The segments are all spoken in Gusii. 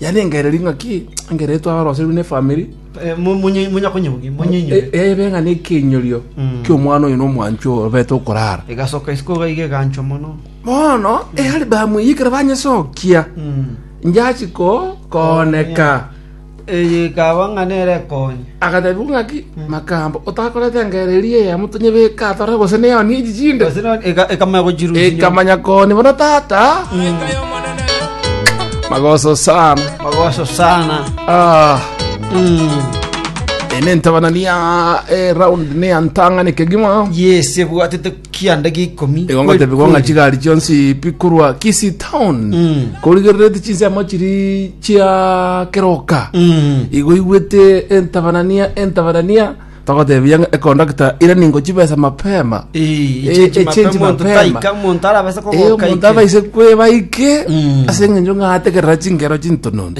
Yarengereria ing'aki engiya ere twaoroserwe n'efamiri, Eh, mu- munye- munya konyebugia munyenyore e- ebe ng'a nekenyurio Mm. ki'omwana oyo n'omwanchwa oyo obete okorara. egasoka isiko iga iga eganchwa mono Bono ealibamu eye ekero banyesokia, Mm. njachi ko kooneka. eye ikaba ng'a nere ekonye Agateebigwa ng'aki, Makamba, otakorete engeera eria eya motonyebeke atore gose neoni echi chinde? Gose none eka- ekamanya gochirusia nyomba. Ekamanya koni bono tata. Magoso sana. Magoso sana. Ah, Mm. ene ntabanani ya eh, round ne ya ntang'ani kegima. Yes, ebwatete kianda gi'ikomi Igo kweri ngotebigwa ng'a kweri. chigari chionsi bikorwa Kisii town Mm. korigerereti chinsemo chiri chia keroka Mm. igo igwete entabanania entabanania togotebia ng'a ekondakta ira ningo chibesa mapema Eh, Eh, echenji echenji mapema, monto mapema. taika, monto arabase kogoka Eh, omonto ike. abaise kwebaike Mm. ase eng'encho ng'ategerera chingero chintononto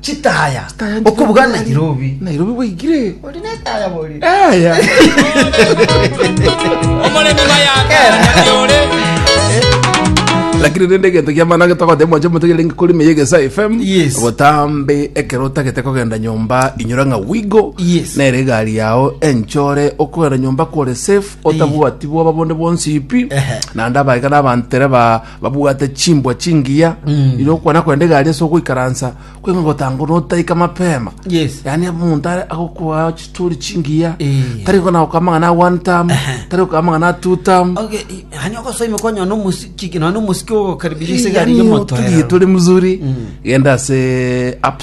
Chitaya. Chitaya ndi- Okubuga ndi- Nairobi. Nairobi bwaigire. Ori netaya bori. Aya. omoremi bayakanakiore lakini rende egento kiamana getogothe mwache motegerenge kori meye gesa fm Yes. gotambe ekero otagete kogenda nyomba inyora ng'a wigo Yes. nere egari yao enchore okogenda nyomba kore safe otabwati bwaba bonde bonsi ipi Ehe. naende abaika nabantere ba babwate chimbwa chingiya iria okwana kwenda egari ase ogoikaransa kweng'we gotango notaika mapema Yes. yani omonto are- agokoa chitori chingiya Eh. tari gona gokoa amang'ana a one term tari gokoa amang'ana a two term Okay, i- hani ogosoima kwanya no musiki no musiki ogokaribisha sigari Yaani yo moto. otulie turi mzuri genda ase app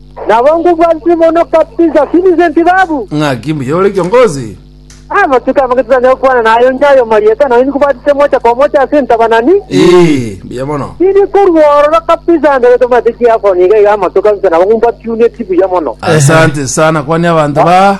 Nabo ngubua Simono kabisa, Simize ntibabu. Ng'aki mbuya ore kiongozi? Amatuko amange titanyare gokwana naye onde aye omarieta, naye nikubatise mocha kwa mocha ase entabanani. Ee, mbuya mono. Tindi korwa ororo kabisa mbere tomanyete chiakonya iga iga amatuko kabisa, nabo ngumbakiunetie buya mono. Asante sana kwania abanto ba.